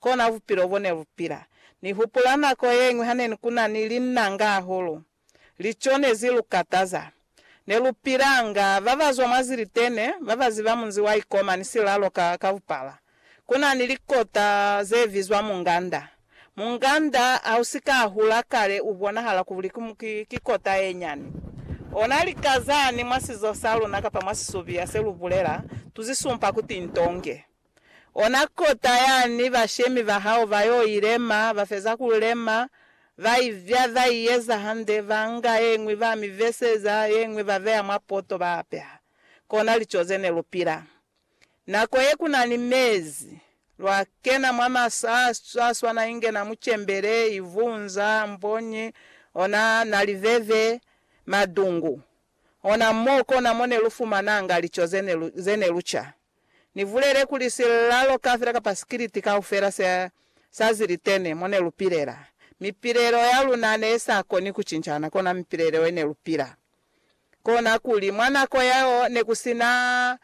Kona bupilo bo ne lu pila. Ni hupula nako ye ñwi ha ne ku na ni linnanga hahulu. Lico ne zi lu kataza. Ne lu pilanga ba ba zwa mwa zilitene, ba ba ziba munzi wa Ikoma ni silalo ka, ka bupala. Ku na ni likota ze bizwa munganda. Munganda ha u si ka hula kale u bonahala kuli ki, ki, ki kota ye nyani. Ona lika zani mwa sizo sa luna kapa mwa sisubiya se lu bulela, tu zi sumpa kuti ntonge. Ona kota yani bashemi ba hao ba yo i lema, ba feza ku lema, ba i vya, ba i eza hande, ba nga ye ñwi ba mi veseza, ye ñwi ba beya mwa poto ba apeha. Kona lico ze ne lu pila. Nako ye ku na ni mezi, lwa kena mwa masa a swana inge na mucembele, ivunza, mponyi, ona na liveve, madungu. Ona mo kona mo ne lu fumananga lico ze ne lu ca. Ni bulele kuli silalo kafela kapa sikiliti kaufela se sa zilitene mo ne lu pilela, mipilelo ya luna ne sa koni ku cincana kona mipilelo ye ne lu pila. Kona kuli, mwa nako yeo ne ku si na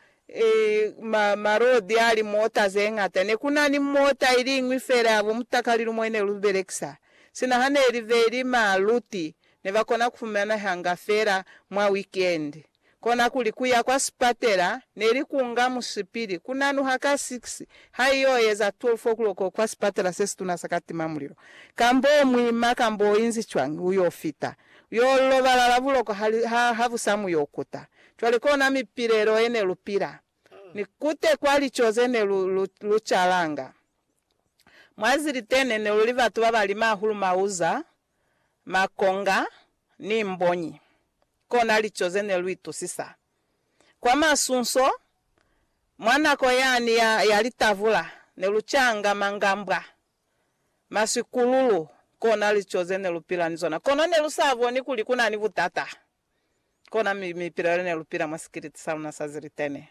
ma, malodi a li mota ze ñata. Ne ku na ni mota iliñwi fela ya bo mutakalilumo ye ne lu belekisa. Sina ha ne li be li ma luti, ne ba kona ku fumanehanga fela mwa wikendi. Konakuli kuya kwa sipatela neli kunga musipili kunanuha ka 6 haiyo eza 12 o'clock kwa sipatela sesituna sa Katima Mulilo. Kambo muima kambo inzi cwani uyo fita, uyo lobalala buloko hali ha habusa muyo kuta. Cwale kona mipilelo ene lupila, ni kute kwa lico zene lu lu lucalanga. Mwa zilitene neluli batu babali mahulu mauza makonga, ni mbonyi, kona lico ze ne lu itusisa. Kwa masunso, mwa nako yani ya, ya litavula, ne lu canga mangambwa, masikululu, kona lico ze ne lu pila ni zona. Kono ne lu sa boni kuli ku na ni butata. Kona mi, mi pila lune lu pila mwa sikiliti sa luna sa zilitene.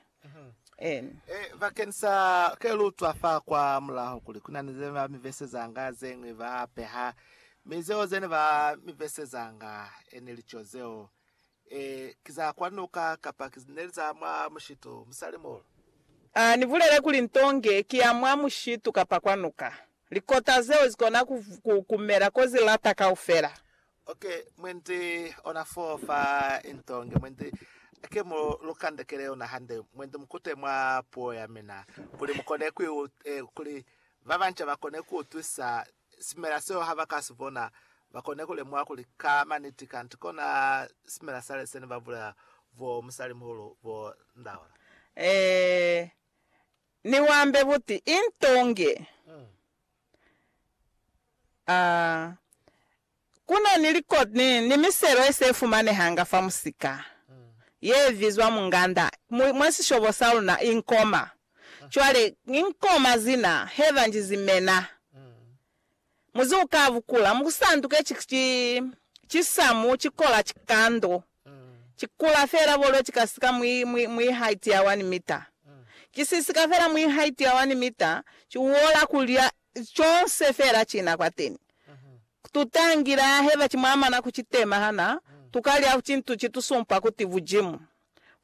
En. E, bakeni sa ke lu utwa fa kwa mulaho kuli kuna ni zene ba mi vesezanga zeñwi ba peha, mi zeo zene ba mi vesezanga, e neli co zeo. E, ki za kwa nuka, kapa ki, neli za mwa mushitu, musali muhulu. A ni bulele kuli nto nge ki ya mwa mushitu kapa kwa nuka. Likota zeo zi kona ku, ku, ku mela ko zi lata kaufela. Ok, mwendi ona fo fa into nge mwendi ke mu lu kandekele yona hande, mwendi mukute mwa puo ya mina, kuli mukone ku eh, kuli ba banca bakone ku utwisa simela seo ha ba ka si bona, bakone ku lemuha kuli ka maniti kanti kona simela sale sene ba bulela bo musali muhulu bo ndaola. Eh, ni wambe buti into nge. Mm. A Ku na ni likoti ni, ni miselo ye se fumanehanga fa musika ye bizwa munganda mwi, mwa sishobo sa luna i nkoma. Cwale, i nkoma zina he ba nji zimena, muzi u ka bukula, mu ku sanduke ki, ki, ki samu, ki kola, ki kando. Ki kula fela bolo ki ka sika mwi, mwi, mwi haiti ya wani mita. Ki si sika fela mwi haiti ya wani mita, ki uola kulya conse fela kina kwateni. Tu tangile aheba ki mwamana ku ki tema hana tu ka lya cintu ki tu sumpa kuti Bujimu.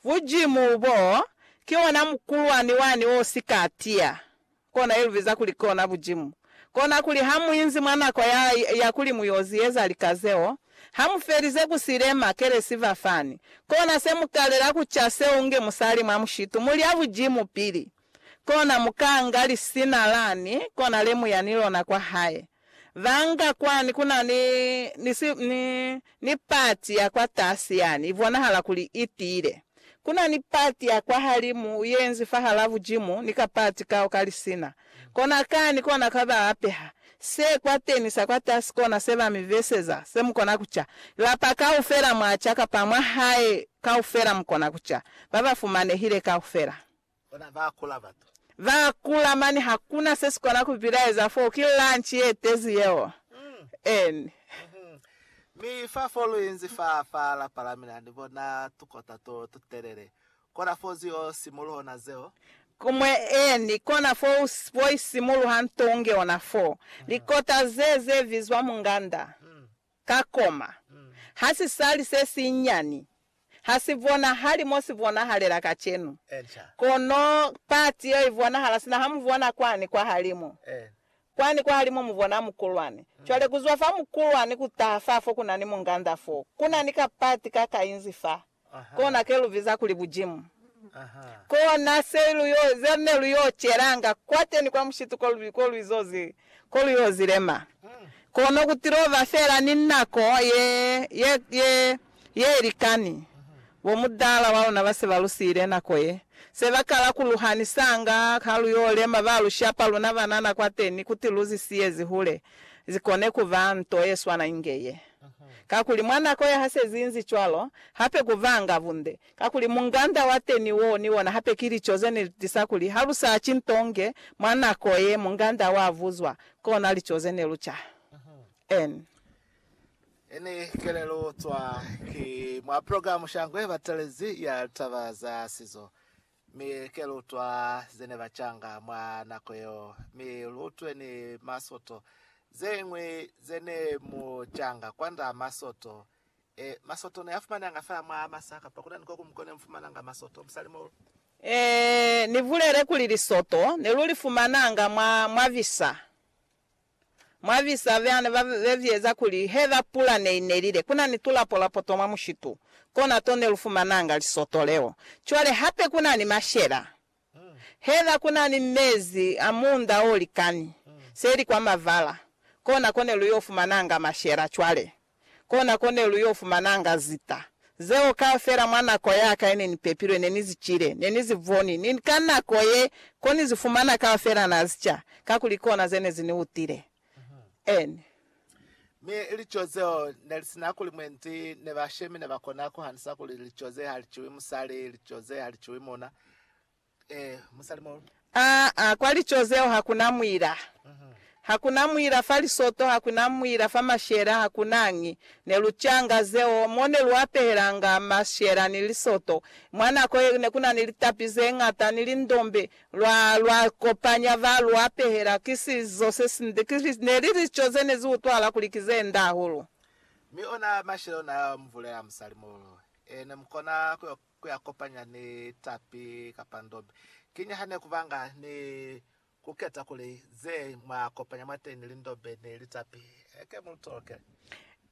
Bujimu bo, ki ona mukulwani wani o si ka tiya. Kona eluviza kuli kona bujimu. Kona kuli hamuinzi mwa nako ya, ya kuli muyoziyeza lika zeo, hamufelize kusilema, kelesi fa fani. Kona se mukalela kuca seo unge musali mwa mushitu, mulya bujimu pili. Kona mukaanga lisina lani, kona lemuya ni lona kwa hae. Banga kwani kuna ni, ni si, ni, ni pati ya kwa tasi yani, ibonahala kuli itiile. Kuna ni pati ya kwa halimu uyenzi fahala bujimu, ni ka pati kao ka lisina. Kona kani kona ka ba apeha. Se kwateni sa kwa tasi kona se ba mi beseza, se mukona kuca. Lapa kaufela mwa ca kapa mwa hae kaufela mukona kuca. Ba ba fumanehile kaufela. Bona ba kula batu. Ba kula mane hakuna se sikona ku bilaeza foo ki lunch ye tezi yeo en. Mi fa fo lu inzi fa fa lapa la mina ni bona tukota to tu telele kona fo zu yo simuluho na zeo. Kumwe en kona fo u fo isimuluha nto unge ona foo likota ze ze vizwa munganda. Ka koma, ha si sali se sinyani, ha si bonahali mo si bonahalela kacenu, kono pati yeo i bonahala sina ha mu bona kwani kwahalimu. Kwani kwahalimu mu bona mukulwani. Cwale, ku zwa fa mukulwani ku taha fa fo ku na ni munganda foo, ku na ni kapati ka kainzi faa. Kona ke lu biza kuli bujimu. Kona se lu yo, ze ne lu yo celanga kwateni kwa mushitu ko lu, ko lu izo zi, ko lu yo zi lema. Kono ku tilo ba fela ni nako ye, ye, ye, ye ilikani. Bo mudala wa luna ba se ba lu siile nako ye. Se ba kala ku lu hanisanga, ha lu yo lema, ba lu shapa luna banana kwateni, kuti lu zi siyezi hule, zi kone kuba nto ye swana inge ye. Kakuli mwa nako ya hasezi inzi cwalo, hape ku vanga bunde. Kakuli munganda wa teni wo ni ona hape ki lico ze ne li tisa kuli ha lu sa ci nto nge mwa nako ye munganda wa vuzwa, kona lico ze ne lu ca. N. Ini kelelo cwa ki mwa program sha ngwe batelezi ya litaba za sizo. Mi ke lu utwa ze ne ba canga mwa nako yeo, mi lu utwe ni masoto zeñwi ze ne mu canga kwand'a masoto. E, masoto ne a fumananga fa mwa masa, kapa ku na ni ko kuñwi ko ne mu fumananga masoto, musalimoulu? E, ni bulele kuli lisoto ne lu li fumananga mwa, mwa visa. Mwa visa vya ne ba vevieza kuli he ba pula ne i nelile ku na ni tulapo-lapo to mwa mushitu, kona to ne lu fumananga lisoto leo. Cwale hape ku na ni mashela. Heza ku na ni mezi a muunda o likani, se li kwa mavala, kona ko ne lu yo fumananga mashela cwale. Kona ko ne lu yo fumananga zita zeo kaufela. Mwa nako ya ka ye ne ni pepilwe, ne ni zi cile, ne ni zi boni, ni ka nako ye, ko ni zi fumana kaufela na zi ca, kakuli kona ze ne zi ni utile. N. Mi lico zeo ne li sina kuli mwendi, ne bashemi ne ba kona ku hanisa kuli lico ze ha li ciwi musali, lico ze ha li ciwi muna. Aa, kwa lico zeo hakuna muila. Hakuna muila fa lisoto, hakuna muila fa mashela, hakunañi. Ne lu canga zeo, mo ne lu apehelanga mashela ni lisoto. Mwa nako ye ne kuna ni litapi zeñata ni lindombe, lwa, lwa kopanya ba lu apehela. Ki sizo sesinde. Ki, ne li lico ze ne zi utwahala kuli ki ze nde hahulu. Mi ona mashela ona a mvulela musali muhulu. Ee, ne mu kona ku yo ku ya kopanya ni tapi kapa ndobe. Ki ni ha ne ku banga ni ku keta kuli ze mwa kopanya mwateñi li ndobe ni li tapi heke mu tolokele.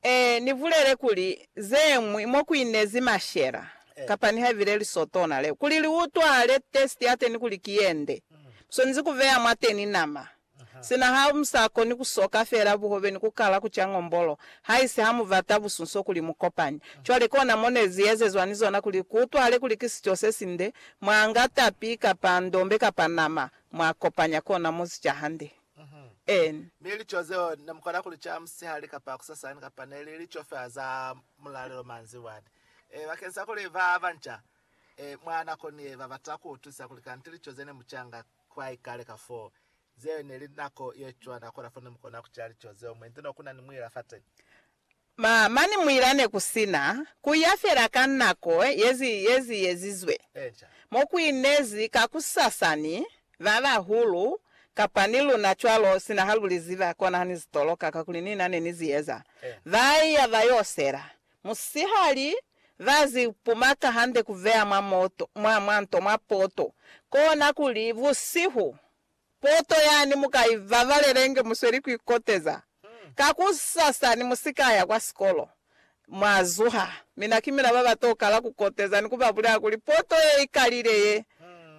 Ee, ni bulele kuli ze ñwi mo ku inezi mashela kapa nihaibile lisotona leo. Kuli li utwale testi ya teni kuli ki ye nde, mu swanezi ku beya mwateñi nama Sina ha mu sa koni ku soka fela buhobe ni ku kala ku ca ngombolo, haisi ha mu bata busunso kuli mu kopane. Cwale kona mo ne zi ezezwa ni zona kuli ku utwahale kuli ki sico se sinde, mwa nga tapi, kapa ndombe, kapa nama, mwa kopanya kona mo zi ca hande. En. Mi lico zeo ne mu kona ku li ca musihali kapa kusasani, kapa ne li lico fela za mulalelo manzibwani. E, bakeñisa kuli ba banca, e, mwa nako ni ye, ba bata ku utwisisa kuli kanti lico ze ne mu ca nga kwaikale kafoo. Zeo ne li nako ye cwana kola fo ne mu kona ku ca lico zeo mwe nto no ku na ni muila fateni. Ma, mani muila ne ku si na, ku ya fela ka nako ye zi, ye zi yezizwe. Eeca. Mo ku inezi kakusasa ni ba bahulu, kapa ni luna cwalo, sina ha lu li ziba, kona ha ni zi toloka, kakuli ni na ne ni zi eza. Eeca. Ba iya ba yo sela. Musihali, ba zi pumaka hande ku veya mwa moto, mwa, mwa nto, mwa poto. Kona kuli, busihu, poto yani mu ka i babalela inge mu sweli ku ikoteza. Kakusasa ni mu si ka ya kwa sikolo. Mwa zuha, mina ki mina ba ba to kala ku koteza ni ku ba bulela kuli, Poto ye i kalile ye!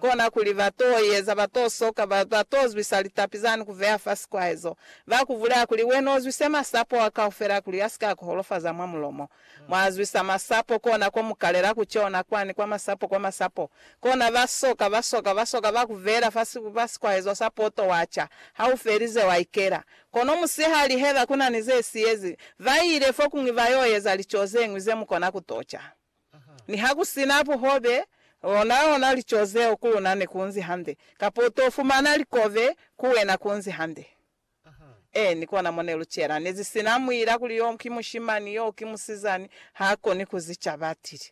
Kona kuli ba to i eza, ba to soka, ba, ba to zwisa litapi zani ku veya fa sikwahezo. Ba ku bulela kuli, Wena u zwise masapo a kaufela kuli a si ka ku holofaza mwa mulomo. Mwa zwisa masapo, kona ko mu kalela ku cona kwani, kwa masapo, kwa masapo. Kona ba soka, ba soka, ba soka, ba ku veela fa si, fa sikwahezo sa poto, wa ca. Ha u felize, wa ikela. Kono musihali, heba ku na ni ze siyezi, ba ile fokuñwi ba yo eza lico ze ñwi ze mu kona ku to ca. Nihakusina buhobe, onaona lico zeo ku luna nekunzi hande, kapa utofumana likobe ku wena kunzi hande. Eeni, kona mo nelucela. Nezisina muila kuli yo ki mushimani, yo ki musizani, haakoni kuzicaba, atile.